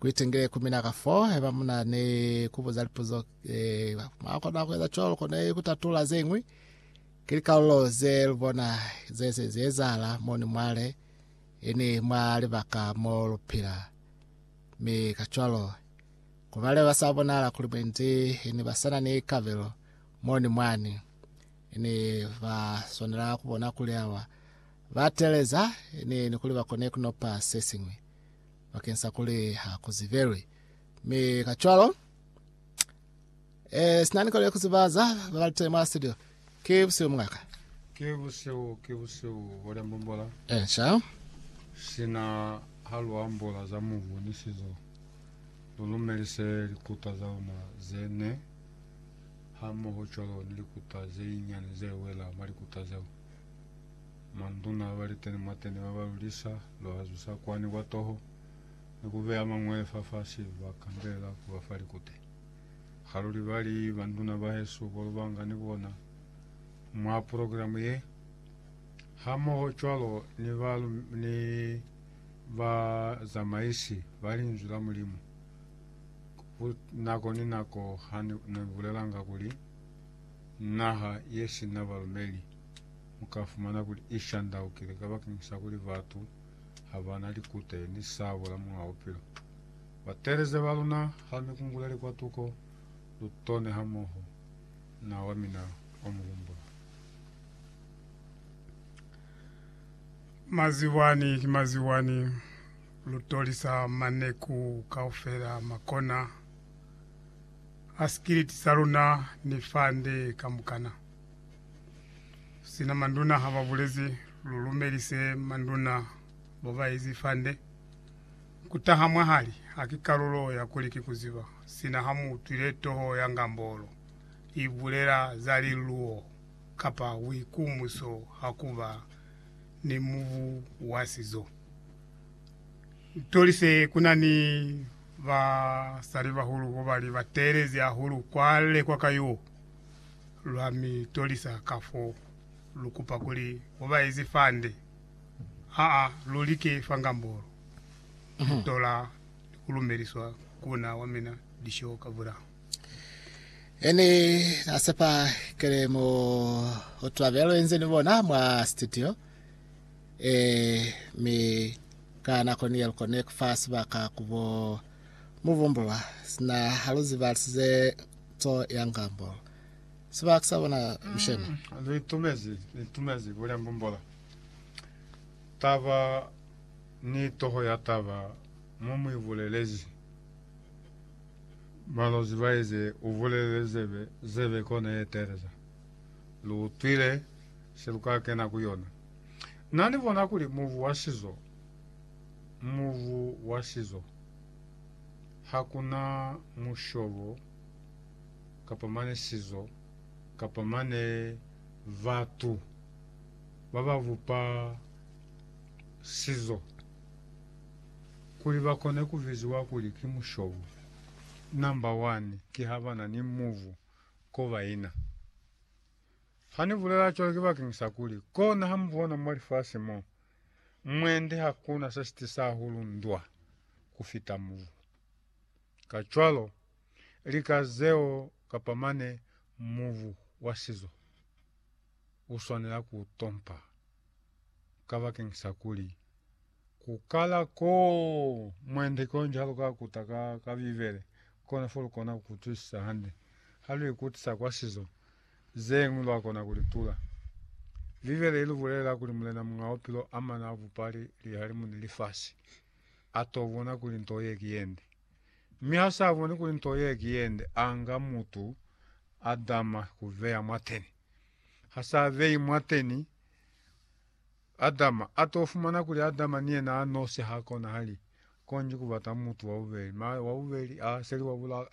Kuitengele ku mina ka fo haiba mu na ni ku buza lipuzo. Mwa kona ku eza cwalo kona ku tatula ze ñwi. Ki likalulo ze lu bona ze se zi ezahala mo ni mwale, ini mwa libaka mo lu pila. Mi kacwalo, ku bale ba sa bonahala kuli mwendi ini ba sa na ni kabelo mo ni mwani, ini ba swanela ku bona kuli awa ba teeleza, ini ni kuli ba kone ku nopa se siñwi. bakeng sa kuli ha ku zibelwi. Mi ka cwalo, eh, sina ni kona ku ziba za ba ba tele mwa studio. Ki buseo mungaka. Ke buseo, ke buseo, Boda Mbombola. Eh, sha. Sina ha lu ambola za mubu ni sizo, lu lumelise likuta za luna ze ne, hamoho cwalo ni likuta ze nyinyani ze wela mwa likuta zeo. Manduna baliteni mwateni baba lulisa lwa zusa kwani kwa toho ni kubeya mangwele fafasi ba kandelela kuba fa likute. Haluli bali, Banduna bahesu kolubanga ni bona mwa progilamu ye, hamoho cwalo ni ba ni ba zamaisi ba Linzwi la Mulimu, ku nako ni nako ha ni bulelanga kuli naha ye sina balumeli. mu ka fumana kuli i shandaukile kabakeñisa kuli batu ha ba na likute ni sabo la Muñ'a Bupilo. Batelezi ba luna, ha lu mi kunguleli kwa tuko, lu tone hamoho na wa mina o mu humbula. Maziwani ki maziwani, lu tolisa maneku kaufela ma kona a sikiliti sa luna ni fande kamukana. Sina manduna ha ba bulezi lulumeli se manduna bo ba ezi fande ku taha mwahali ha ki kalulo ya kuli ki ku ziba sina ha mu utwile toho ya ngambolo i bulela za liluo kapa buikumuso ha ku ba ni mubu wa sizo. Ntoli se ku na ni basalibahulu bo ba li ba teelezi hahulu kwa lekwa ka yo. lwa mi tolisa ka fo lu kupa kuli ho ba ezi fande aa lu like fangambolo lu tola ni ku lumeliswa ku na wa mina disho ka vula. Ene a sepa kele mo ho twabelo enze ni bona mwa studio e mi ka nako ni yelko ne ku fa sibaka ku bo mubumbulwa sina haluzi ba lisize Tso ya ngambo. Sibaka sa bona lisheme. Li tumezi, li tumezi ku lembumbola taba ni toho ya taba mo mu ibulelezi. Balozi ba ize u bulelele zebe, zebe kona ye teeleza. Lu utwile se lu ka kena ku yona. Na ni bona kuli mubu wa sizo, mubu wa sizo. ha ku na mushobo kapa mane sizo kapa mane batu ba ba bupa sizo kuli ba kone ku biziwa kuli ki mushobo. Namba wani ki ha ba na ni mubu ko ba ina. Ha ni bulela cwalo ki bakeñisa kuli, kona ha mu bona mwa lifasi mo, Mwende hakuna se si tisa hahulu ndwa ku fita mubu. Kacwalo, lika zeo kapa mane mubu wa sizo u swanela ku u tompa kabakeñisa kuli ku kala koo mwende konji ha lu ka kuta ka, ka Bibele, kona fo lu kona ku utwisisa hande ha lu ikutisa kwa sizo Zeñwi lwakona kulitula. Bibele ilubulelela kuli Mulena Muñ'a Bupilo amana abupali lihalimu ni lifasi, atobona kuli nto ye ki yende. Mi hasaaboni kuli nto ye ki yende, anga mutu Adama kubeya mwateni. Hasaabeyi mwateni, Adama, atofumana kuli Adama ni yena anosi hakonahali konji kubata mutu wabubeli. Mara wabubeli aaseli wa bulaka,